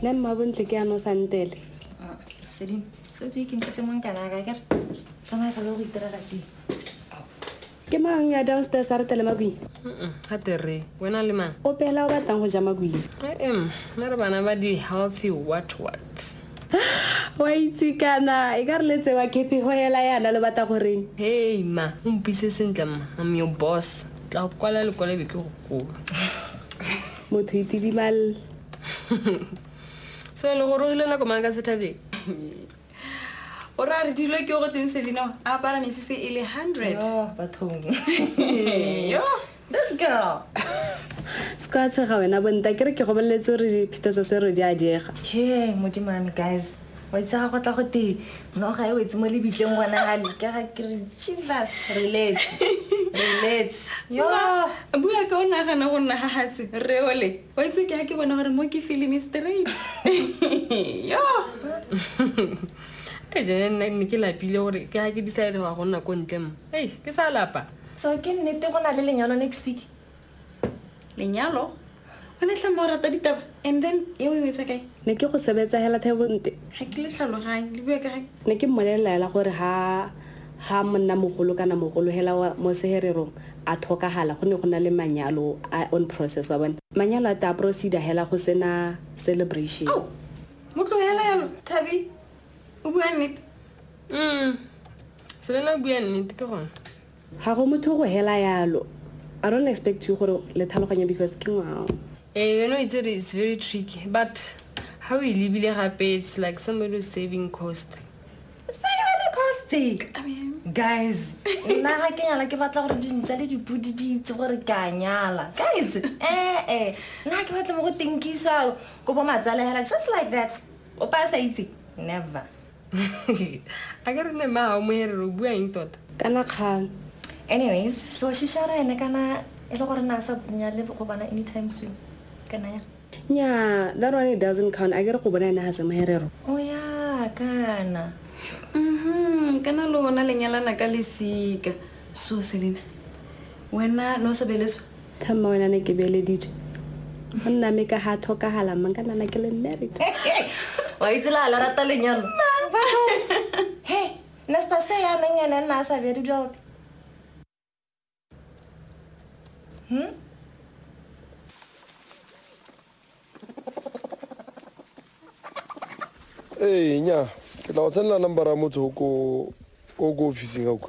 nna mmabontle ke ano santele ah, sedimo so tse ke ntse mong kana ka kere tsamaya ka lo go itira ka teng ke mang ya downstairs a re tele makwing ga tere wena le mang o pela o batlang go ja makwing em nna re bana ba di healthy what what wa itse kana e ka re letse wa kepi go hela yana lo batla goreng hei ma o mpise sentle ma am your boss tla go kwala lekwalebe ke go koo motho itidimalle so le gore o ile nako mang ka sethabeng o ra re dilo ke go teng selino a apara mesese e le hundred bathong yo this girl ska tshega wena bonta ke re ke gobeletse gore phita tsa se re di a diega ke modimame guys wa itsega go tla go te noga e wetse mo lebitleng gona ga lekega ke re jesus relax relax yo bua ka o nagana go nna gagase reole wa itse ke ga ke bona gore mo ke filimi straight yo e jene nna ne ke lapile gore ke ga ke decide go ya go nna ko ntle mo ei ke sa lapa so ke nnete go na le lenyalo next week lenyalo o ne tlhama o rata ditaba and then e o e etsa kae ne ke go sebetsa hela thebonte ga ke le tlhaloganye le bue kae ne ke mmolelelaela gore ha ha monna mogolo kana mogolo hela mo sehererong a tlhokagala go ne go na le manyalo a on process wa bone manyalo a ta procedure hela go sena celebration oh, mo tlogela yalo thabi o bua nnete mm selela o bua nnete ke gone Ga go motho go hela yalo. I don't expect you gore le tlhaloganye because ke ngwao. Eh, you know it's, it's very tricky but ha o e lebile gape it's like somebody who's saving cost. Saving cost? I mean, guys nna ga ke nyala ke batla gore dintša le dipodi di itse gore ke a nyala guys ee eh, nna ke batla mo go tinkiswa ko bo matsalehela just like that o pa sa itse never a ke re ne mao moerere o bua eng tota kana kgang anyways so shishara ene kana e le gore na sa bunya le go bona anytime soon kana ya nya that one it doesn't count a ke re go bona ene ga se moherero o ya kana mhm kana lona lenyalana ka lesika so selena wena no sebeletswe Tha mma wena ne ke beeleditswe go nna me ka ga tlhokagala mang ka nana ke le married wa itse la la rata lenyalo he nesta se ya meng ene nna a sa bjadi dilo ope hmm? ee nya ke tla go tsenela number ya motho o ko officing auka